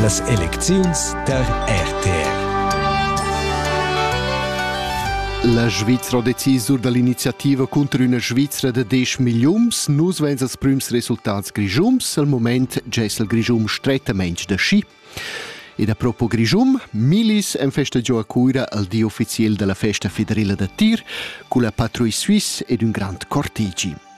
Las elecziuns tar RTR. La Svizra ha decisur dall'iniziativa cunter üna Svizra da 10 milliuns. Nus veins als prüms resultats grischums. Al moment gess il Grischum strettamaintg da schi. Ed a propo Grischum, Milis en festa giò a Cuira al di ufficiel della festa federela da tir cun la patruille suisse ed un grand cortegi.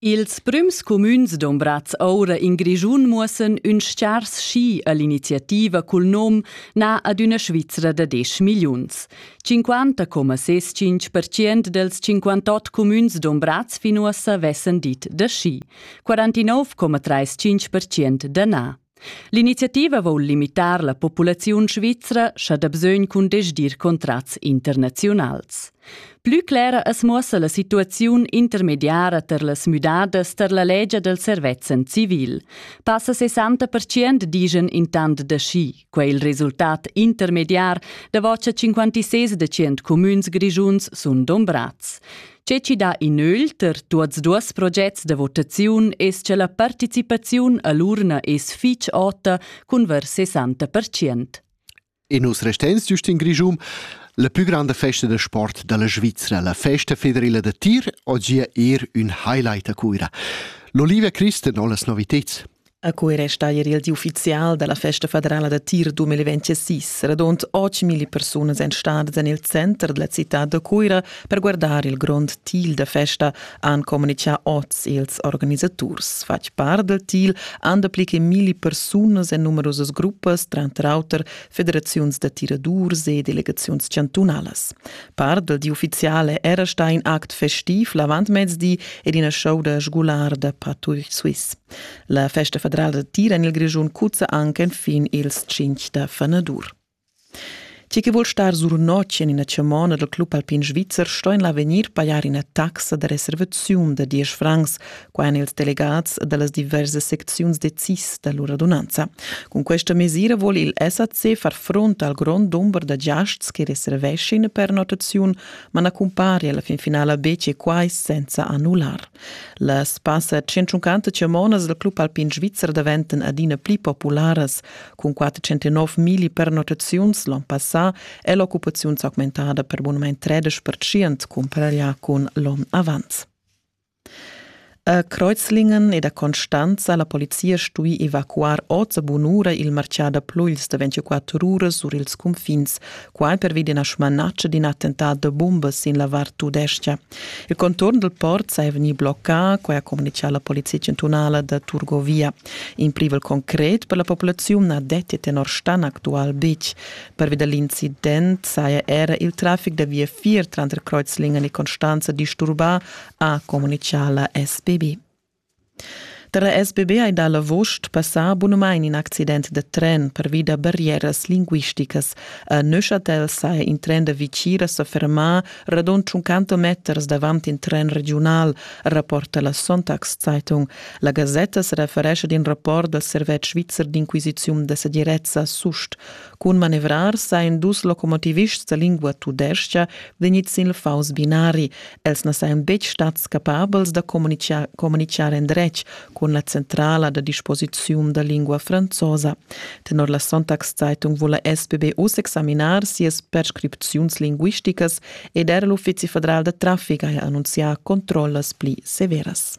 Ils prüms cumüns dombrats oura in Grischun muossan ün stgars schi a l'iniziativa cul nom na ad üna Svizra da desch milliuns. 50,65% dels 58 cumüns dombrats fin uossa vessan dit da schi, 49,35% da na. L'iniziativa voul limitar la populaziun svizra scha da bsögn cun desdir contrats internaziunals. Plü clera as muossa la situaziun intermediara ter las müdadas ter la legia del servezzan civil. Passa 60% digen intant da schi, quai il resultat intermediar da voce 56% comüns grigiuns sun dombrats. Tge chi dà in ögl ter tuots duos progets da votaziun es cha la participaziun a l'urna es fich ota cun ver 60%. E nus restens giust in Grischun la plü granda festa da sport da la Svizra, la Festa federela da tir, oggi er un highlight a Cuira. L'Olivia Christen ho las noviteds. A quei resta ier il di ufficial dalla festa federala da tir 2026. Radund 8.000 persunas ein stadas en il center della città da Cuira per guardar il grond til da festa, han comunicà oz ils organisaturs. Fatg part del til han dapli che mille persunas en numerosas gruppas, tranter auter federaziuns da tiradurs e delegaziuns chantunalas. Part del di ufficiale era stà in act festiv l'avantmezdi ed ina show da sgular da patugl suisse. La festa federala da tir en il Grischun cuzza anche enfin ils 5 da fanadur. Chi che vuol star sur notg en ina chamona dal club alpin svizzer sto en l'avegnir pajar ina taxa da reservaziun da 10 francs, qua èn ils delegats da las diversas secziuns decis da lur radunanza. Cun questa mesira vuol il SAC far front al grond dumber da giasts che reserveschin per notaziun, ma na cumpari alla fin finala betg quai senza annullar. Las passa tschintschuncantas chamonas del club alpin svizzer daventan adina pli popularas, cun 409 mili pernottaziuns l'on passà è l'occupaziun s'augmentada per bunamain 13%, compara ja cun l'on avant. A Kreuzlingen ed a Constanza la polizia stui evacuar oz a bun'ura il marcià da pluils da 24 uras sur ils cunfins, Quai pervi d'ina smanatscha d'in attentat da bumbas sin la vart tudestga. Il conturn dal port saja vegnì bloccà, quai ha communitgà la polizia chantunala da Turgovia. In privel concret per la populaziun na detti tenor Stan actual betg. Pervi da l'incident saja era il traffic da viafier tranter Kreuzlingen e Constanza disturbà, ha communitgà la SBB. Da la sbb hai dà l'avust passà bunamain in accident da tren pervi da barrieras linguisticas. A Neuchâtel saja in tren da Vichira sa fermà radund tschunquanta meters davant in tren regiunal, rapporta la Sonntagszeitung. La gasetta sa referescha ad in rapport dal servetsch svizzer d'inquisiziun da segirezza SUST. Cun manevrar sain dus locomotivists da lingua tudescha vegnids sin il faus binari. Els na sajan betg stads capabels da communitgar, communitgar endretg cun la centrala da disposiziun da lingua franzosa. Tenor la Sonntagszeitung vula SPB uss examinar sias prescripziuns linguisticas ed era l'uffizi federal da traffic ha annunzià controllas pli severas.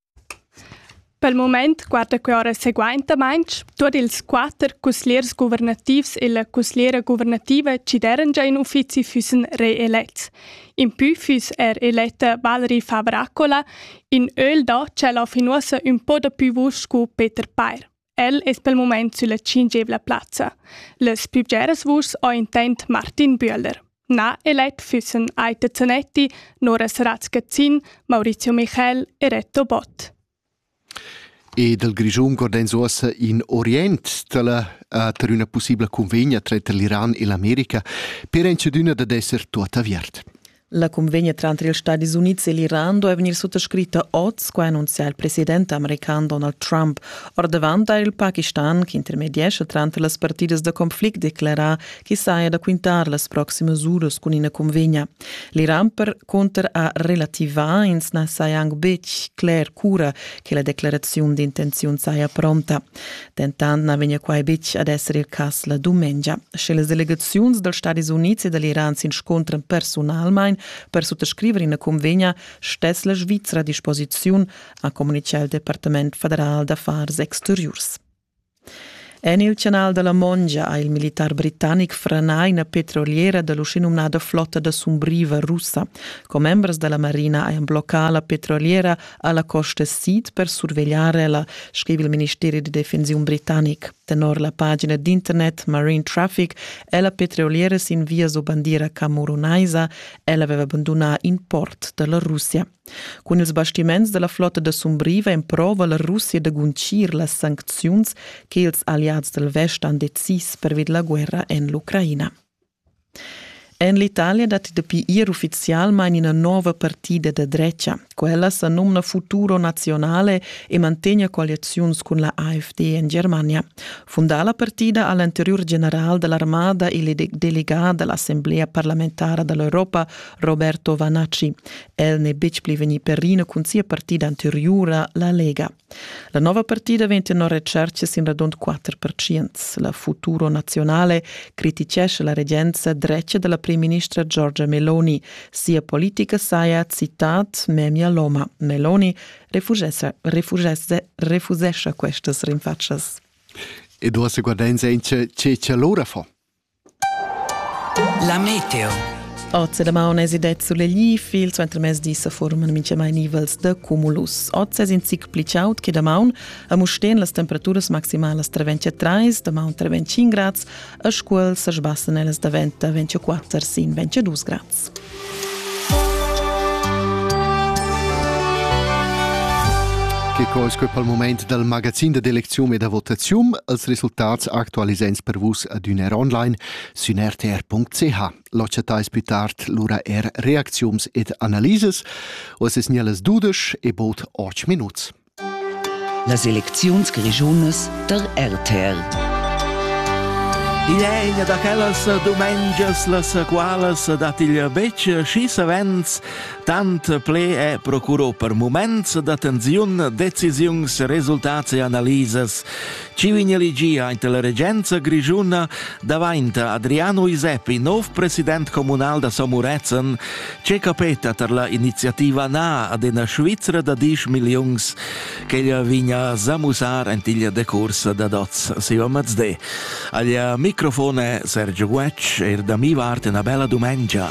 Pel mumaint guarda que ora seguaintamaing tuot ils quatter cusgliers guvernativs e la cusgliera guvernativa chi d'eran già in uffizi füssen reelets. Impü füss er eletta Valerie Faber-Accola, in ögl da tschella fin uossa ün po dapü vusch scu Peter Pair. El es pel mumaint sülla tschingevla plazza. Las pü bgeras vuschs ho intent Martin Bühler. Na elet füssen Aita Zanetti, Nora Saratz-Gazzin, Maurizio Michel e Reto Bott. E dal Grischun gordens uossa in Orient dalla uh, per üna possibla convegna tranter l'Iran e l'America per entschedüna dad esser tuot aviert. La cunvegna tranter ils Stadis Unids e l'Iran doveva vegnir suttascritta oz, qua annunzia il president american Donald Trump. Ordavant ha il Pakistan, ch'intermediescha tranter las partidas da conflict, declarà che saja da quintar las proximas uras cun ina cunvegna. L'Iran per cunter ha relativà, ins na saja anc betg cler cura che la declaraziun d'intenziun saja pronta. Dentant na vegnia quai betg ad esser il cas la dumengia, sche las delegaziuns dals Stadis Unids e da l'Iran s'inscontran personalmain per suttascriver ina cunvegna, stess la Svizra a disposiziun, ha communitgà il Departament federal d'affars exteriurs. En il canal da la Mongia ha il militar britannic franà ina petroliera da l'uschenumnada flotta da sumbriva russa. Commembers da la marina hajan bloccà la petroliera alla Costa Sid per survegliare la, scrive il Ministero di Defensione britannic. Tenor la pagina d'internet Marine Traffic è la petroliera in via su bandiera camerunaisa, ella aveva abbandonato in port della Russia. Con ils bastiments della flotta da Sumbriva emprova la Russia da guncir las sancziuns che ils alleati del Vest han decis per vid la guerra en l'Ucraina. En l'Italia datti dapi ier uffizialmain ina nova partida da dretga. Quella sa numna Futuro Nazionale e mantegna coaliziuns cun la AfD en Germania. Fundà la partida ha l'anteriur general da l'armada e delegà da l'assemblea parlamentara da l'Europa, Roberto Vanaci. El n'è betg pli vegnì per ina cun sia partida anteriura, la Lega. La nova partida vegn tenor retscherca sin radund 4 percents. La Futuro Nazionale critichescha la regenza dretga della primministra Giorgia Meloni. Sia politica saja, citat, memia loma. Meloni refusesce, refusesce, refusesce questas rinfaccias. E du hast guardain se in ce ce ce l'ora fa? La meteo. Oz la maun es idet sulegli, fil suenter mezdi se forman minchamai nivels de cumulus. Oz es in zic pli chaud che da maun, a Musteen las temperaturas maximalas tra 23, da maun tra 25 grads, a Scuol se sbassen ellas da 24 sin 22 grads. Che co es que pel moment dal magazin da d'elecziun e da votaziun als resultats actualisents per vus adüna er online sün rtr.ch. L'occetais plü tard lura er reacziuns ed analises. Os es gnellas dudesch e bod 8 minuts. Las elecziuns grischunas der RTR. Igl è ina da quellas dumengias, las qualas dat il betg schi savens tant ple è procuro per moments da tensiun, decisiuns, resultats e analisas Chi vegn elegia ante la regenza grischuna davainta Adriano Iseppi nov president comunal da Samurezen, che capeta tar la iniziativa na ad ena Svizzera da 10 milliuns ch'ella vigna zamusar antiglia decursa da dots siva mazdé. Aglia microfone Sergio Guec, er da mi vart una bella dumengia.